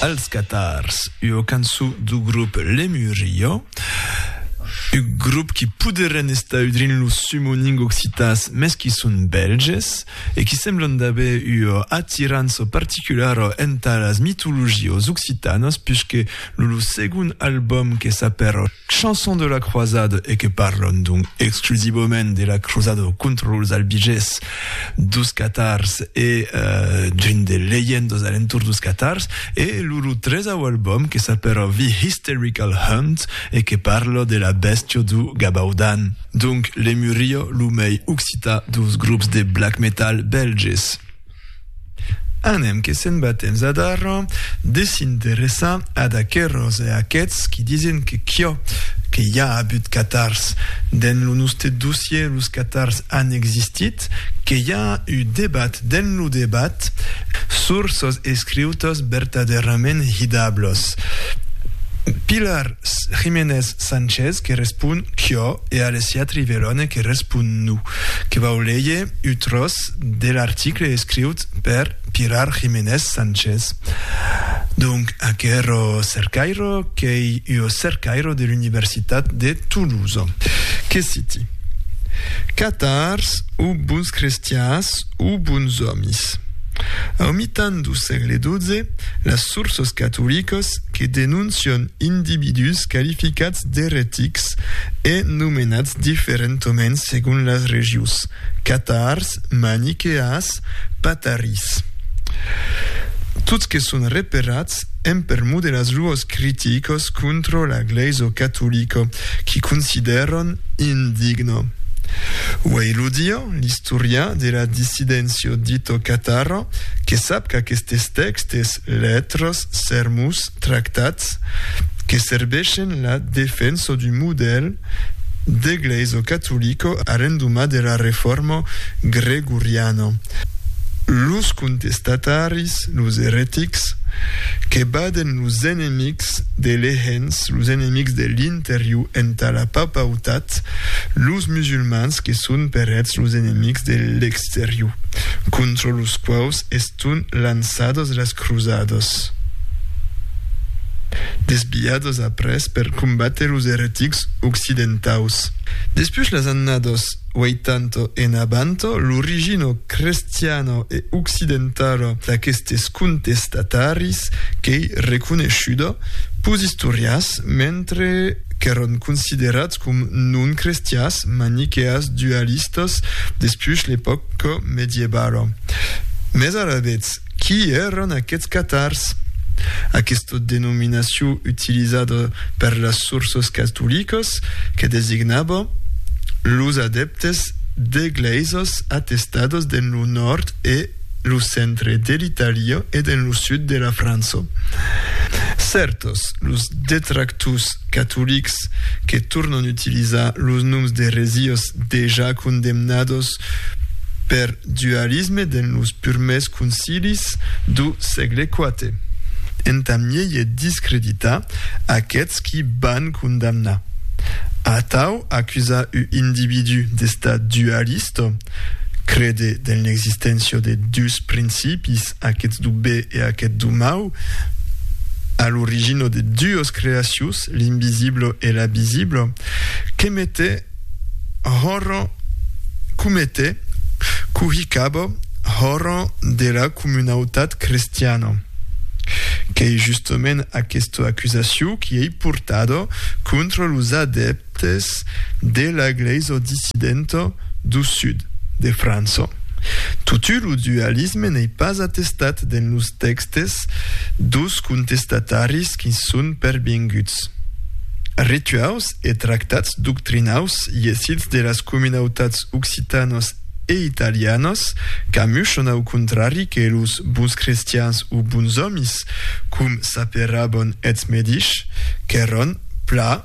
Els Catars, ua cançon dau grop Lemuria, un grop qui poderien estar udrint los sumoning occitans mes qui son bèlges e qui semblan d'aver ua atirança particulara entà las mitologias occitanas puisque lo segon album que s'apèra Chanson de la croisade e que parlon donc exclusivament de la crosada contra los albiges dos catars e d'un de leyendos alentour dos catars e loro tresau album que s'apèra The Hysterical Hunt e que parla de la bèstia do Gabaudan. Donc Lemuria, lo mei occitan dos grops de black metal bèlges. Anem que se'n va temps adar de s'interessar ad aqueròs e aqueths qui disen que quò que i a abut catars. Dens lo noste dossier los catars an existit, que i a u debat dens lo debat sur sos escriutos bertaderament hidablos. Pilar Jiménez Sánchez que respon quò. E ales s'i atrivèron e que respon nu, que vau léger ua tròç de l'article escriut per Pilar Jiménez Sánchez. Donc, aquerò cercairo qu'ei ua cercairo de l'Universitat de Toulouse. Que citi, Catars o bons crestians o bons òmis. Au mitan dau sègle XII, las sources catoliques que denoncion individús qualificats d'eretics e nomenats diferentoments segon las regius, catars, maniqueas, patarís. Tots que son reperats en permor de las luòs criticos contra la glèisa catolica qu'i considèran indigna. Uèi lo dia, l'istorian de la dissidéncia dita catara que sap qu'aquestes tèxtes, letras, Sermos tractats que serbeishen la defenso d'un modèl d'eglèisa catolica arrendoma de la reforma gregoriana. Los contestataris, los eretics, que baden los enemics de l'ehens, los enemics de l'interior entà la papautat, los musulmans que son per eths los enemics de l'exterior, contra los quaus es Son lançados las cruzadas. Desviados après per combatre los eretics occidentaus. Despús las annadas 80 en avant, l'origina crestiana e occidentala d'aquestes contestataris qu'ei reconeishuda pus istorians, mentre. qu'èron considerats com non crestiás, maniqueas, dualistas, despuish l'epòca medievala. Mès alavetz, qui èron aquests catars? Aquesta denominacion utilizada per las sources catolicas que designava los adèptes d'egleisas atestadas dens lo nòrd e lo centre de l'Italia e dens lo sud de la França. Cèrtos, los detractors catolics que tornan utilizar los noms de resiós dejà condemnados per dualisme dens los purmèrs concilis dau sègle IV. Entà mièi discreditar aqueths qui van condamnar, atau acusar u individú d'estar dualista, Crede dens l'existéncia de dus principis, aqueth du be e aqueth du mau, a l'origina de dues creacions, l'invisibla e la visibla, que mete hòra comete cohicaba hòra de la comunautat crestiana. Qu'ei justament aquesta acusacion qui ei portada contra los adeptes Des de la glèisa dissidenta du sud de França. Totu lo dualisme n'ei pas atestat dens los tèxtes dus contestataris qu'i son pervenguts. Rituaus e tractats doctrinaus iesits de las comunautats occitanas e italianas qu'amuchan au contrari que los bons crestians o bons òmis, com s'aperavan eths medichs, qu'èran pla,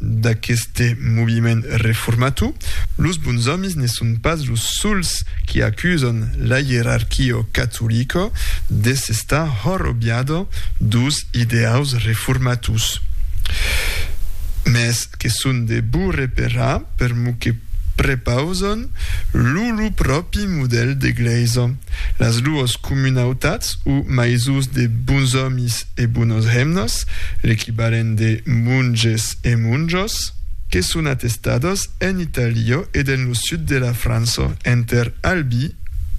d'aqueste moviment reformator, los bons òmis ne son pas los sols qui acusan la ierarquia catolica de s'estar horrobiada dos ideaus reformators, mes que son de bou reparar per mou que prepausan lo lou pròpi modèl d'eglèisa. Las duos comunautats o maisons de bons òmis e bonos hemnas, l'equivalent de monges e monjos, que son atestados en Itàlia e dens lo sud de la França, enter Albi,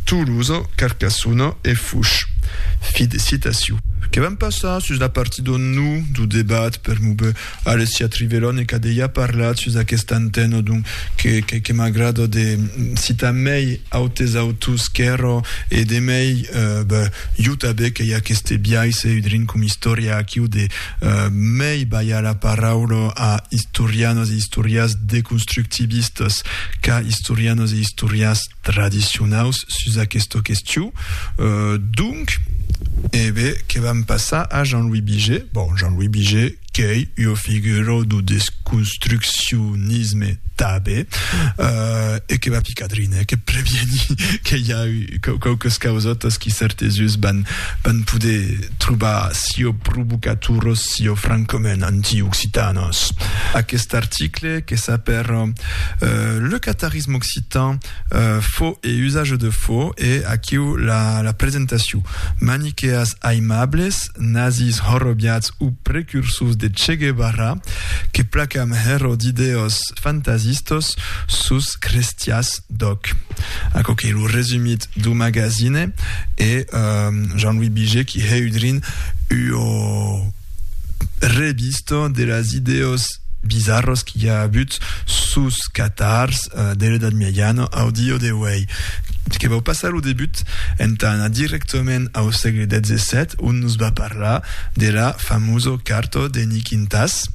Tolosa, Carcassona e Fouche. Fi de citacion. Que vam passar sus la partit d'on no, do debat, per move. Alessia Trivelon e qu'a dejà parlat sus aquesta antena, donc que, que m'agrada de citar mei autes autors qu'èra e de mei, ben, jo tanben qu'ei aqueste biais e udrin com istòria aquiu de mei balhar la paraula a istorianas e istorias deconstructivistas qu'a istorianas e istorias tradicionaus sus aquesta question. Donc, ebe, que vam passar a Jean-Louis Biget. Bon, Jean-Louis Biget, qu'ei ua figura du desconstruccionisme tanben, e que va picar drin, eh, que previeni que i a quauques causotas qui cèrtes uns van poder trobar sieu provocatoras, sieu francament anti-occitanas. Aquest article que s'apèra Le Catarinenc, L'oralisme occitan, fo e usage de fo, e aquiu la presentacion. Maniqueas aimables, nazis horrobiats o precursors de Che Guevara, que placam hèro d'ideòs fantasistos sus crestias d'òc. Aquò qu'ei lo resumit dau magazine e Jean-Louis Biger qui heudrin ua. revista de las idèas bizarras qu'i a avut sus catars de l'Edat Miajana au dia d'auei, que vau passar lo debut entà anar directament au sègle XVII, ont nos va parlar de la famosa carta de Nikintas.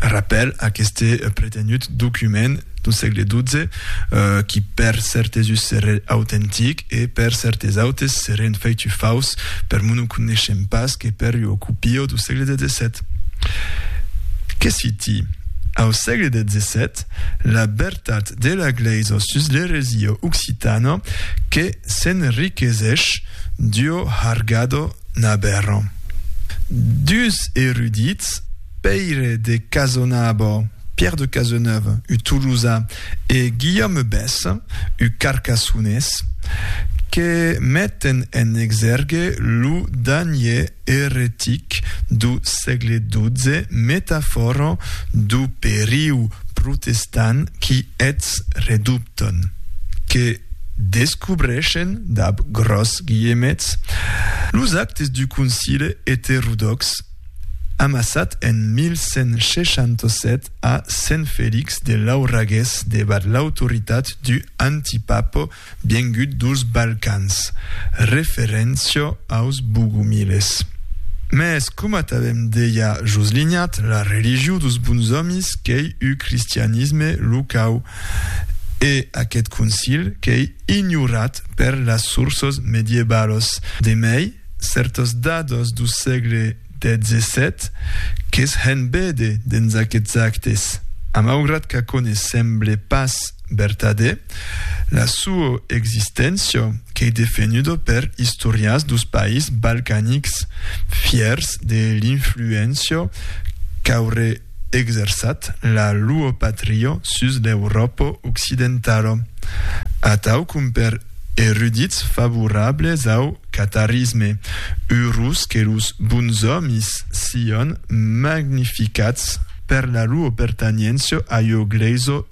Rapèl, aqueste pretenut document dau sègle XII, qui per cèrtes us serrè autentic, e per cèrtes autes serén feitu faus per mon o coneishem pas que per ua copio do sègle xvii. Que si ti, au sègle xvii, la bertat de la Glèisa sus l'eresia occitana que s'enriquesesh d'ua hargada naberra. Duus erudits, Pèire de Casonabo, Pierre de Cazeneuve, un Tolosan, e Guillaume Besse, un Carcassonés, que meten en exèrgue lo danhier eretic do sègle xii, metafòra do periu protestant qui eths redubton, que descubreishen, dab gròs guilhemets, los actes du Concile eterodòx, Amassat en 1167 a Sent Felix de Lauragués debat l'autoritat d'u antipapo viengut dos Balcans, referéncia aus Bogumiles. Mès coma t'avem deia jos linhat, la religiu dos bons òmis qu'ei u cristianisme locau, e aquest concil qu'ei ignorat per las sourças medievalas. De mei, cèrtas dadas du sègle XVII que's hèn véder dens aqueths actes. A maugrat qu'aquò ne semble pas vertadèr, la sua existéncia qu'ei defenhuda per istorians dus païs balcanics fièrs de l'influéncia qu'auré exerçat la luo patrio sus l'Euròpo occidentalo, atau compèr erudits favorables au catarisme, urus que los bons òmis sion magnificats per la luo pertaniencio a io glèiso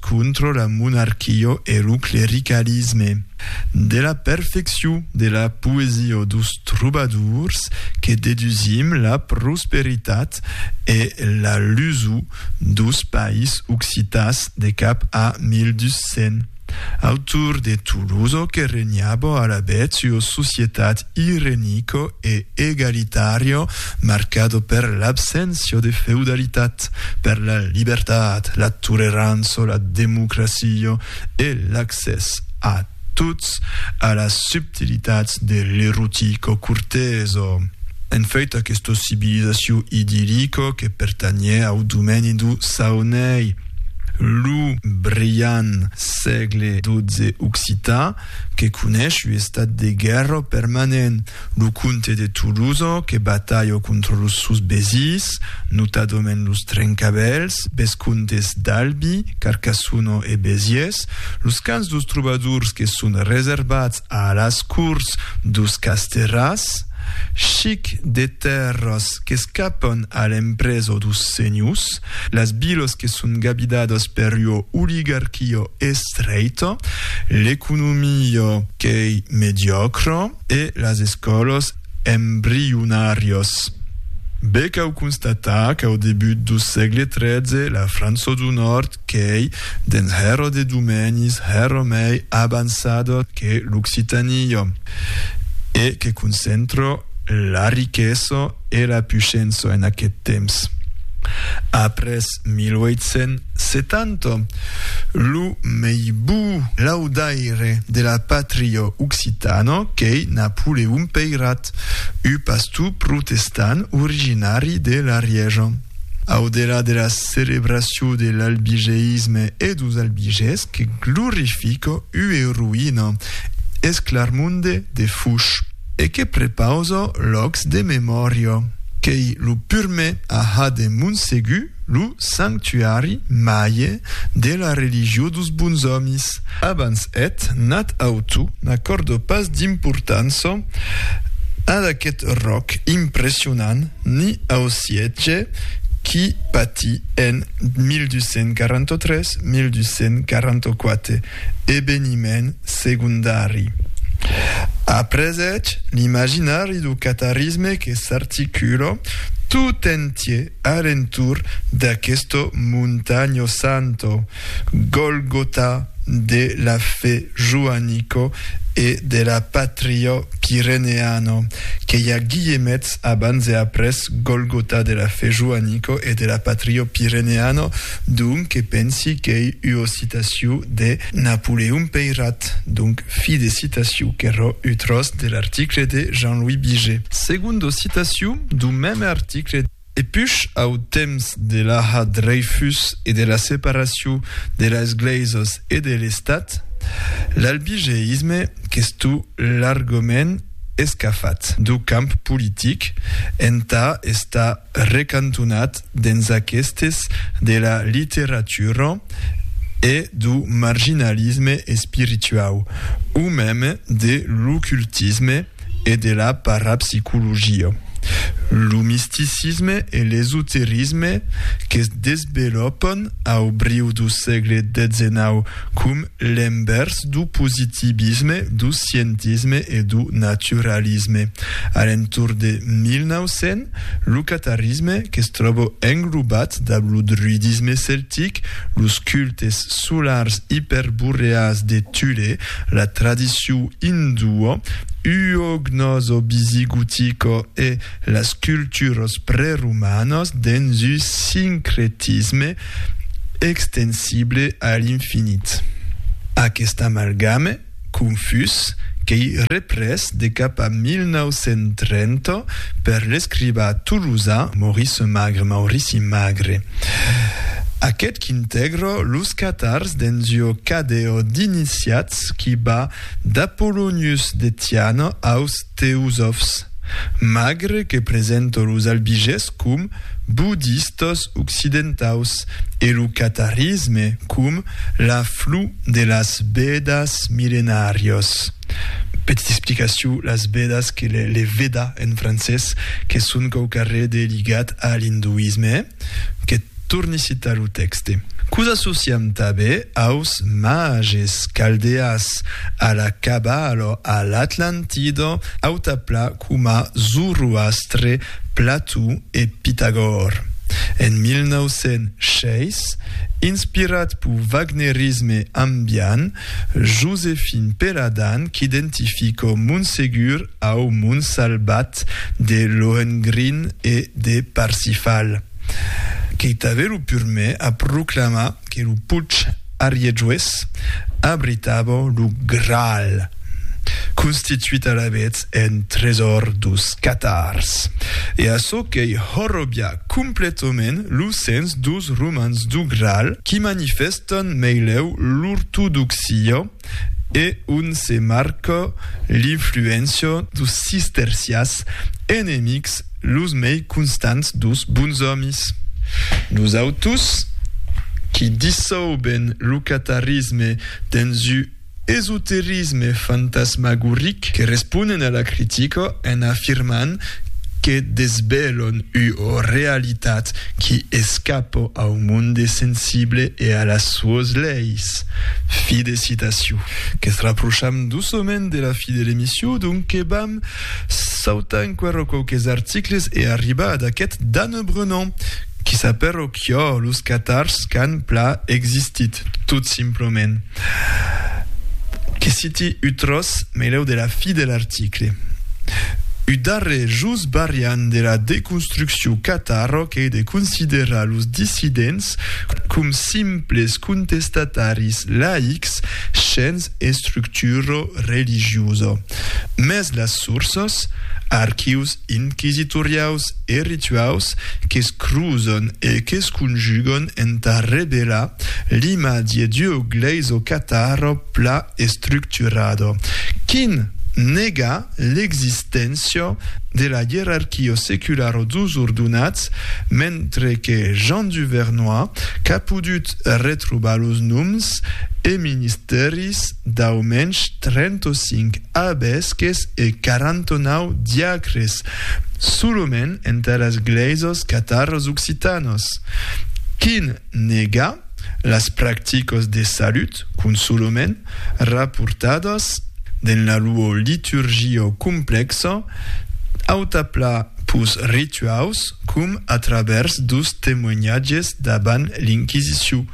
Contra la monarquia e lo clericalisme. De la perfeccion de la poesia dos trobadors que dedusim la prosperitat e la luso dos país occitàs de cap a 1200. Autor de Tolosa que regnava alavetz ua societat irenico e egalitario marcado per l'abséncia de feudalitat, per la libertat, la tolerança, la democracia e l'accès a tots a las subtilitats de l'erotico corteso. En fait, aquesta civilizacion idillica que pertanhè au domeni dau Saonei, lo brilhant sègle XII occitan, que conesh ua estat de guèrra permanent, lo comte de Toulouse que batalha contra los sòus besís, notadament los Trencavèls, vescomtes d'Albi, Carcassona e Besiés, los cans dos trobadors que son reservats a las cors dos Casterràs, chic de tèrras qu'escapan a l'empresa dos senhors, Las vilas que son gabidadas per ua oligarquia estreita, l'economia qu'ei mediòcra e las escòlas embrionàrias. Be cau constatar qu'au debut do sègle tretze la França do Nòrd qu'ei dens hèra de domenis hèra mei avançada que l'Occitània e que concentra La riquesa e la puishença en aqueth temps. Après 1870, lo mei bou laudaire de la patria occitana qu'ei Napoleon Peirat, ua pastor protestant originari de l'Arièja. Au delà de la celebracion de l'albigeisme e dos albigés que glorifica ua roïna, es Clarmonde de Fouche. e que prepauso lòcs de memòria, qu'ei lo purmè a ha de Montsegur lo sanctuari maie de la religió dos Bonsòmis. Abans eth nat auto n'acòrdo pas d'importança ad aqueth ròc impressionant ni au siètge qui patii en 1243-1244. Eveniment segondari. Après eth, l'imaginari du catarisme que s'articula tot entier a l'entorn d'aquesto montanho santo, Golgota de la fe joanico e de la patrio pireneano, que i a guillemets abans e après Golgota de la fe joanico e de la patrio pireneano, Donc que pensi qu'ei ua citaciu de Napoleon Peyrat, donc fi de citaciu qu'errò ua tròç de l'article de Jean-Louis Biget. Segunda citaciu dau mème article. Depuish au temps de l'Aha Dreyfus e de la separaciu de las Glèisas e de l'Estat, l'albigeisme qu'estó largament escafat dau camp politic entà estar, recantonat dens aquestes de la literatura e du marginalisme espirituau, o meme de l'ocultisme e de la parapsicologia. Lo misticisme e l'esoterisme que se desvelopon au briu du sègle xix coma L'envèrs du positivisme, du scientisme e du naturalisme. A l'entorn de 1900, lo catarisme, que's tròba englobat dab lo druidisme celtic, los cultes solars iperboreals de Thule, la tradicion indua, uognosovisigotica e las culturas preromanas dens un sincretisme extensible a l'infinit. Aqueste amalgame confús qu'ei représ de cap a 1930 per l'escrivà tolosà Maurice Magre, Maurici Magre, aqueth qu'intègra los catars dens ua cadèa d'iniciats qui va d'Apollonius de Tiana aus teosofs, magre que presento los albiges com budistas occidentaus e lo catarisme com la flu de las Vedas millenàrias. Petita explicacion, las Vedas que les Vedas en francés que son quauquarre de ligat a l'induisme. Que torni citar lo tèxte. Quo s'associam tabé aus mages caldèas, a la Cabalo, a l'Atlantido, auta pla coma Zoroastre, Plató e Pitagòr. En 1906, inspirat pau wagnerisme ambiant, Josephine Peladan qu'identifico Montsegur au Mont Salbat de Lohengrin e de Parsifal. Qu'eitave lo purmè a proclamar que lo puig Arièjues abritava lo Graal, constituit alavetz en tresòr dos catars. E açò qu'ei horrobiá completament lo sens dos romans du Graal qui manifèstan meleu l'ortodoxia e ont se marca l'influéncia dos cistercians, enemics los mei constants dos bons òmis. Nosautos, qui dissauben lo catarisme dens un. esoterisme fantasmagoric que responen a la critica en afirmant que desvelon ua realitat qui escapa au monde sensible e a las suas leis. Fi de citacion. Que's raprocham doçament de la fi de l'emission, donque vam sautar enquera quauques articles e arribar ad aquest d'Anne Brenant, qui s'apèra Çò los catars qu'an pla existit, tot simplament. Que citi u tròç meleu de la fi de l'article. U darrer just barriant de la deconstrucciu cataro qu'ei de considerar los dissidents com simples contestataris laics shens estructuro religioso. Mès las sourças, archius, inquisitoriaus e rituaus que's cruzon e que's conjugon entà revelar l'imatge d'ua glèisa o catarro pla estructurada quin nega l'existéncia de la ierarquia seculara dus ordonats, mentre que Jean du Vernoy qu'a podut retrobar los noms e ministèris Dau mensh 35 abesques e 49 diacres soloment entaras gleisas cataras occitanas. Quin nega las practicas de salut qu'un soloment raportadas den la lua liturgia complexa autapla pus rituaus com a travèrs dus temoignatges dabant l'Inquisiciu,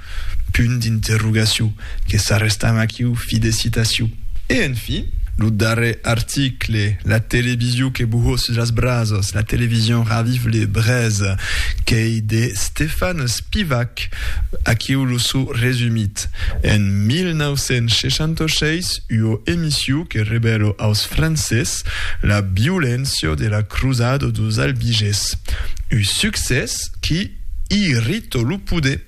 Punt d'interrogaciu, que s'arrestam aquiu, fi de citaciu. E en fi, lo darrer article, la televisiu que buhó sus las brasas, la television raviv le brèz, qu'ei de Stefan Spivak, aquiu lo suu resumit. En 1966, ua emissiu que revèlo aus Francés la violència de la crusada dos Albiges. U succès qui irritó lo poder.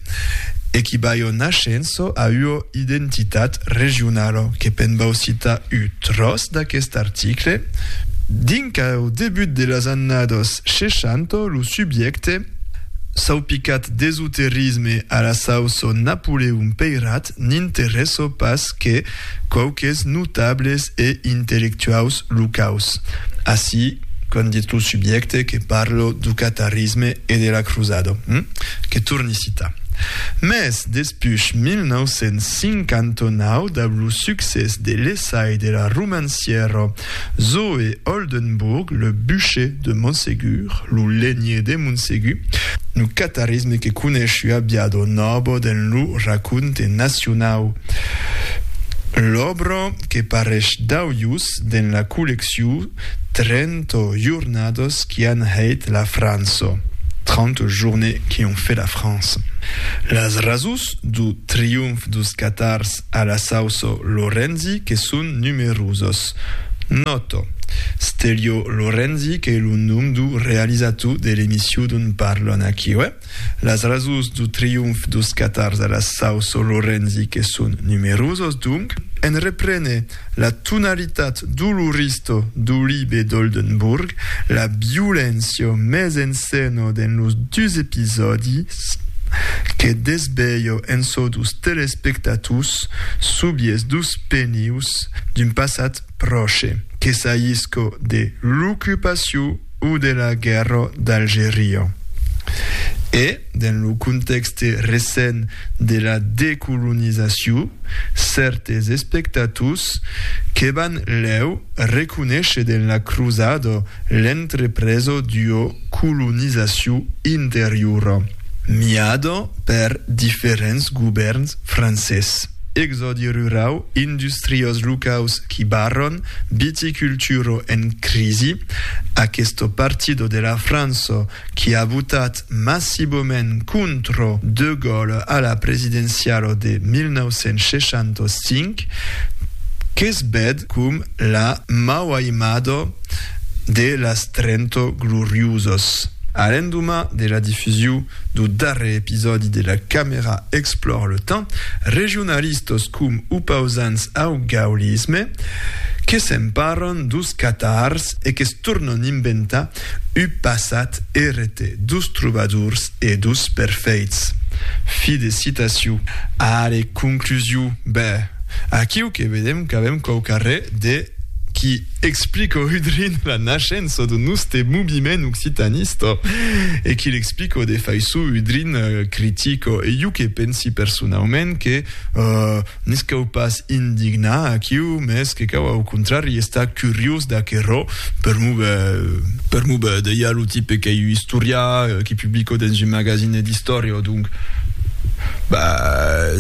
e qui baiò nascenço a ua identitat regionala, que pe'n vau citar u tròç d'aquest article, dinc au debut de las annadas 60 lo subjècte, saupicat d'esoterisme a la sauço Napoleon Peirat, n'interèsso pas que quauques notables e intellectuaus locaus, ací qu'an dit lo subjècte que parlo du catarisme e de la crusada, que torni citar. Mès despuch 1959, dab lo succès de l'essai de la romancièra Zoé Oldenbourg, le Buché de Montségur, lo Lenhier de Montségur, lo catarisme que conesh ua biado nòbo dens lo raconte nacionau. L'òbra que paresh d'auius dens la collecciu Trento jornadas qui an hèit la França, Trente journées qui ont fait la France. Las rasus dau triomf dos catars a la sauço Lorenzi que son numerosos. Nòto, Stelio Lorenzi qu'ei lo nom do realizator de l'emission dont parlon aquí, uèi? Las rasons do triomf dos catars a la sauço Lorenzi que son numerosos, donc, en reprene la tonalitat doloristo do libe d'Oldenburg, la violéncia mes en scèna dens los dus episòdis, que desvelha en çò dos telespectators subies dos penius d'un passat pròche, que s'ahisca de l'ocupacion, o de la guèrra d'Algeria. E, dens lo contèxte recent de la decolonizacion, cèrtes espectators que van lèu reconéisher dens la crosada l'entrepresa d'ua colonizacion interiora miada per diferents govèrns francés. Exòdi rurau, industriós locaus qui barron, viticulturo en crisi, Aquesto partido de la Franço qui a votat massiboment contro De Gaule a la presidencialo de 1965, que's bed com la mauaimado de las Trento Gloriusos. A l'endomà de la difusiu Do darrer episòdi de La Camera Explore le Temps, regionalistas com opausants au gaullisme que s'emparan dos catars e que's tornan inventar ua passat errete dos trobadors e dos perfeits. Fi de citacion. Allez, conclusion, ben, aquiu que vedem qu'avem quauqu'arrè de. qui explique au Hudrin la naishença de noste moviment occitanista e qui l'explique au defaissor Hudrin critic. E iu que pensi personaument que nis cau pas indignar aquiu, mes que cau au contrari estar curiós d'aquerò, per mo per mo deia lo tipe qu'ei un istorià qui publicau dens un magazine d'istòria, donc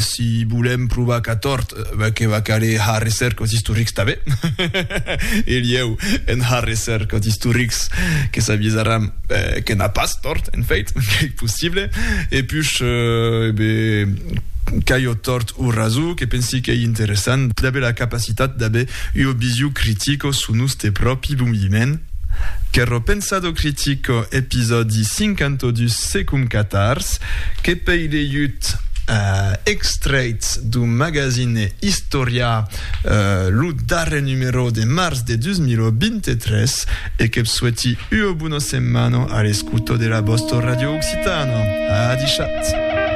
si volem provar qu'a tòrt. ben que va caler har recercas istorics tanben, e lieu en har recercas istorics que s'avisaram que n'a pas tort, en fait, qu'ei possible, e pus, e ben, qu'ei o tort o raso, que pensi qu'ei interessant d'aver la capacitat d'aver ua visio critico su noste pròpi moviment, Qu'erro pensado critico, episòdi 52. Se concatars, que pei de iut extrèits du magasine Istòria, lo darrer numerò de març de 2023, e que'p sueti ua bona setmana a l'escouta de la vòsta ràdio occitana. A dichat!